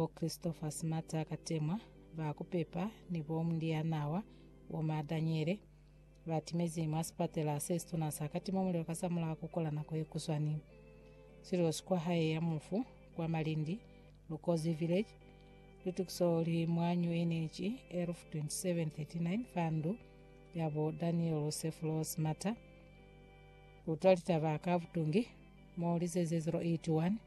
Bo Christopher Smata ka temwa, ba kupepa, ni bo Mlianawa Woma Daniele, ba timezi mwa sipatela se situna sa Katima Mulilo kasamulaho ku kola nako ye kuswani. Silosi kwa hae ya mufu, kwa Malindi, Lukozi Village, lutukiso li mwa New Energy, Elf 2739, fa ndu ya bo Daniel Sefulo Smata. Kutwa litaba ka butungi, mo lizeze 081.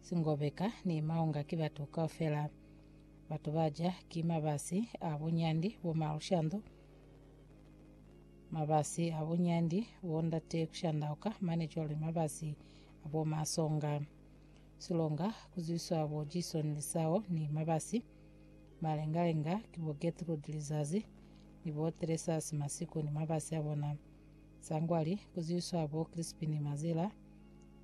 Singobeka ni Maunga ki batu kaufela. Batu ba ja ki mabasi a bunyandi bo ma lushando, mabasi a bunyandi bo ndate kushandauka mane cwale mabasi a bo ma songa. Silonga kuzwiswa bo Jason Lisao ni mabasi. Malengalenga ki bo Gertrude Lizazi ni bo Teresasi Masiku ni mabasi a bona. Sangwali kuzwiswa bo Crispin Mazila.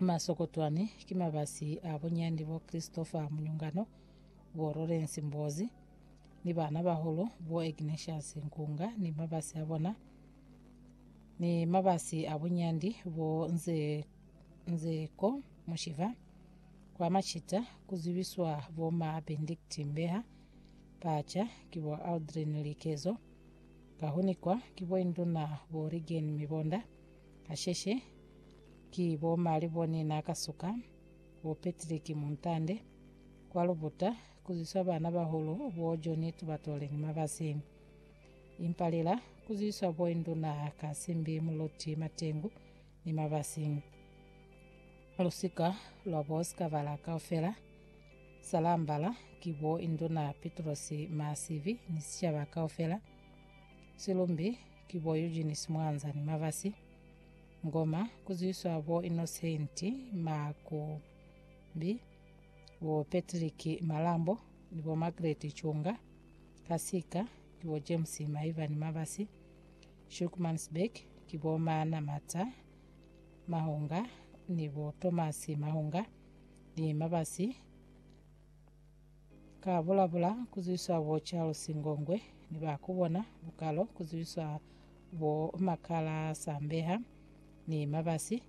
Masokotwani ki mabasi a bunyandi bo Christopher Munyungano, bo Lawrence Mbozi, ni baana-bahulu bo Ignatius Nkunga ni mabasi a bona, ni mabasi a bunyandi bo Nze, Nzeko Mushiva, kwa macita ku zwibiswa bo ma Benedict Mbeha, Pacha ki bo Aldrin Likezo, Kahunikwa ki bo Induna bo Rigen Mibonda, Kasheshe, ki bo Mali bone na ka suka, bo Patrick Muntande, kwa Lubuta, kuzwiswa bana bahulu bo Johnny Tubatole ni Mabasi. Impa lila, kuzwiswa bo Induna Kasimbi Muloti Matengu ni Mabasi. Lusika lwa bo Sikabala kaufela, Salambala, ki bo Induna Pitrosi Masivi ni sicaba kaufela. Silumbi, Ki bo Eugene Simwanza ni Mabasi Ngoma, ku zwiswa bo Innocent Makumbi, bo Patrick Malambo ni bo Margaret Chunga, ka sika ki bo James Maivani Mabasi, Shukmansberg ki bo Maana Mata Mahunga ni bo Thomas Mahunga ni Mabasi Ka bulabula ku zibiswa bo Charles Ngongwe ni ba ku bona bukalo ku zibiswa bo Makala Sambeha ni Mabasi,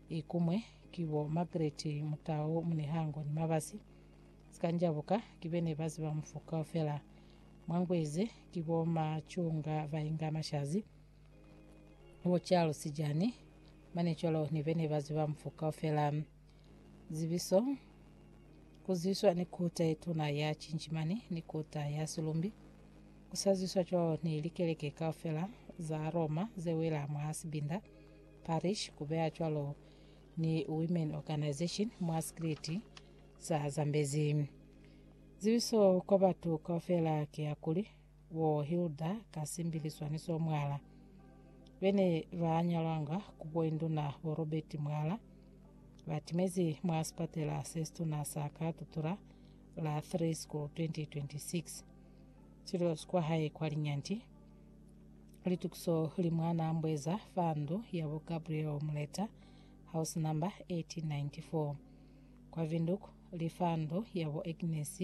ikumwe ki bo Margaret Mutau Munihango ni Mabasi. Sikanjabuka ki bene ba ziba mufu kaufela. Mwa ngu ize ki bo ma Chunga Vainga Mashazi, bo Charles Jani Manicolo ni bene ba ziba mufu kaufela. Zibiso, Ku zwiswa ni kota ye tuna ya Cinjimani ni kota ya Silumbi, ku sa zwiswa cwalo ni likeleke kaufela za Roma ze wela mwa sibinda, parish, ku beya cwalo ni women organization mwa sikriti sa Zambezi. Zibiso kwa batu kaufela ki ya kuli, bo Hilda Kasimbi ni Swaniso Mwala, be ne ba nyalwanga ku boinduna bo Robert Mwala, ba timezi mwa sipatela se situna sa ka Tutura la 3 School 2026. Sililo si kwa hae kwa Linyanti. Litukiso li mwa Nambweza fa ndu ya bo Gabriel Muleta, house number 1894. Kwa Windhoek li fa ndu ya bo Agnes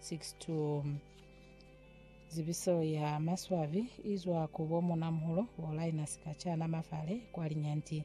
6-2. Zibiso ya maswabi izwa ku bo munamuholo bo Linus Kachana Mafale kwa Linyanti.